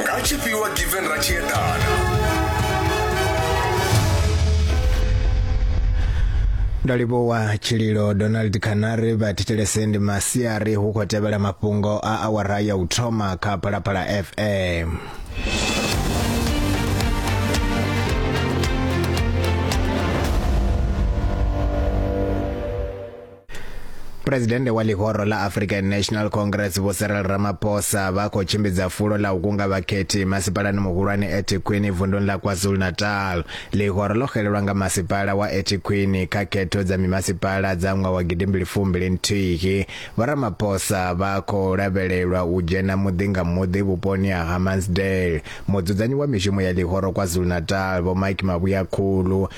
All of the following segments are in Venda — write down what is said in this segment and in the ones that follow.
nga tshifhiwa given ra tshi eḓana ndo livhuwa tshililo donald canary vha thetshelese ndi masiari hu khou tevhela mafhungo a awara ya u thoma kha phalaphala fm Presidente wa ḽihoro ḽa African National Congress Vho Cyril Ramaphosa vha khou tshimbidza fulo ḽa u kunga vhakhethi masipalani muhulwane eThekwini vunduni ḽa KwaZulu-Natal. Ḽihoro ḽo xelelwa nga masipala wa eThekwini kha khetho dza mimasipala dza ṅwaha wa gidimbili fumbili nthihi. Vho Ramaphosa vha khou lavhelelwa u dzhena muḓi nga muḓi vhuponi ha Hammansdale. Mudzudzanyi wa mishumo ya ḽihoro KwaZulu-Natal Vho Mike Mavhuyakhulu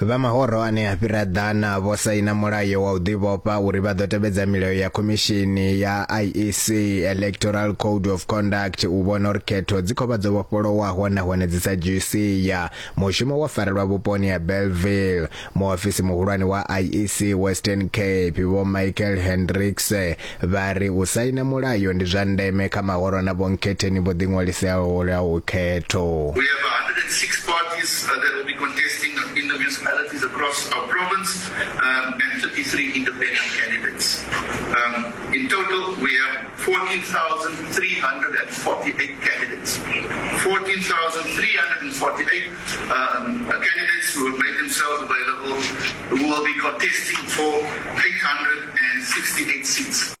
Vha mahoro ane a fhira ḓana vho saina mulayo wa u ḓivhofha uri vha ḓo tevhedza milayo ya khomishini ya IEC Electoral Code of Conduct u vhona uri khetho dzi khou vha dzo vhofholowaho nahone dzi sa dzhii sia. Mushumo wo farelwa vhuponi ha Bellville. Muofisi muhulwane wa IEC Western Cape Vho Michael Hendricks Vha ri u saina mulayo ndi zwa ndeme kha mahoro na vhonkhetheni vho ḓiṅwaliseaho lwa ukhetho. We have 106 parties that will be contesting in the municipalities across our province and 33 independent candidates. In total we have 14,348 candidates. 14,348 Candidates who have made themselves available who will be contesting for 868 seats.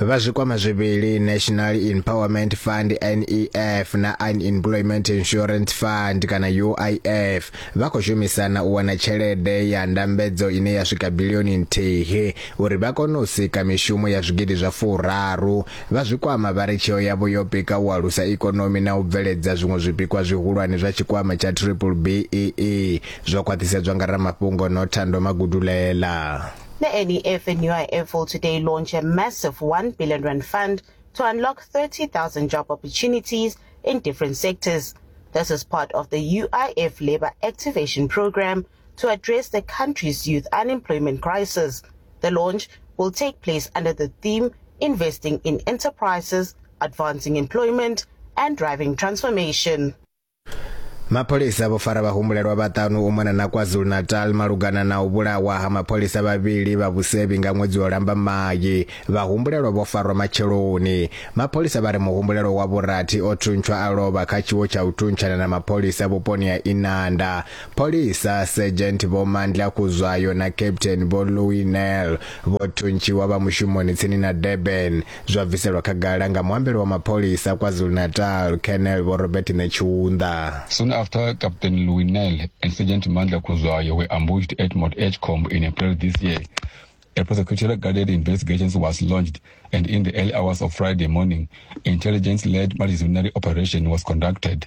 vha zwikwama zwivhili national empowerment fund nef na unemployment insurance fund kana uif vha khou shumisana u wana tshelede ya ndambedzo ine ya swika bilioni nthihi uri vha kone u sika mishumo ya zwigidi zwa furaru. Vha zwi kwama vha ri tsheo yavho yo pika u alusa ikonomi na u bveledza zwiṅwe zwipikwa zwihulwane zwa tshikwama tsha Triple BEE zwo khwaṱhisedzwa nga ramafhungo Nothando Magudulela. The NEF and UIF will today launch a massive 1 billion rand fund to unlock 30,000 job opportunities in different sectors. This is part of the UIF Labour Activation Program, to address the country's youth unemployment crisis. The launch will take place under the theme Investing in Enterprises, Advancing Employment and Driving Transformation. mapholisa vho fara vhahumbulelwa vhaṱanu u mona na kwazulu-natal malugana na u vhulawa ha mapholisa vhavhili vha vhusevhi nga ṅwedzi wa lambamai vhahumbulelwa vho farwa matsheloni mapholisa vha ri muhumbulelo wa vhurathi o thuntshwa a lovha kha tshiwo tsha u thuntshana na mapholisa vhuponi ha inanda Pholisa, Sergeant Vho Mandla Kuzwayo na Captain Vho Louis Nel, vho thuntshiwa vha mushumoni tsini na Durban, zwa bviselwa khagala nga muambeli wa mapholisa a KwaZulu-Natal, Colonel Vho Robert Netshiunda. Soon after, Captain Louis Nel and Sergeant Mandla Kuzwayo were ambushed at Mount Edgecombe in April this year. A prosecutorial-guided investigation was launched, and in the early hours of Friday morning, intelligence-led multidisciplinary operation was conducted.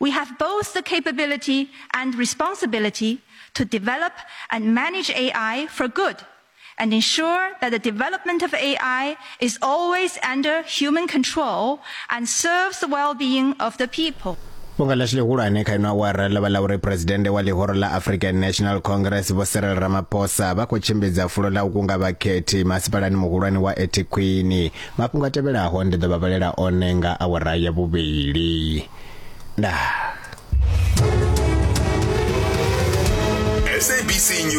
We have both the capability and responsibility to develop and manage AI for good and ensure that the development of AI is always under human control and serves the well-being of the people. Bunga ḽashu ḽihulwane kha ino awara ḽo vha ḽa uri phuresidennde wa ḽihoro ḽa African National Congress Vho Cyril Ramaphosa vha khou tshimbidza fulo ḽa u kunga vhakhethi masipalani muhulwane wa Ethekwini Mafhungo a tevhelaho ndi ḓo vha vhalela one nga awara ya vhuvhili. Ndaa. SABC News.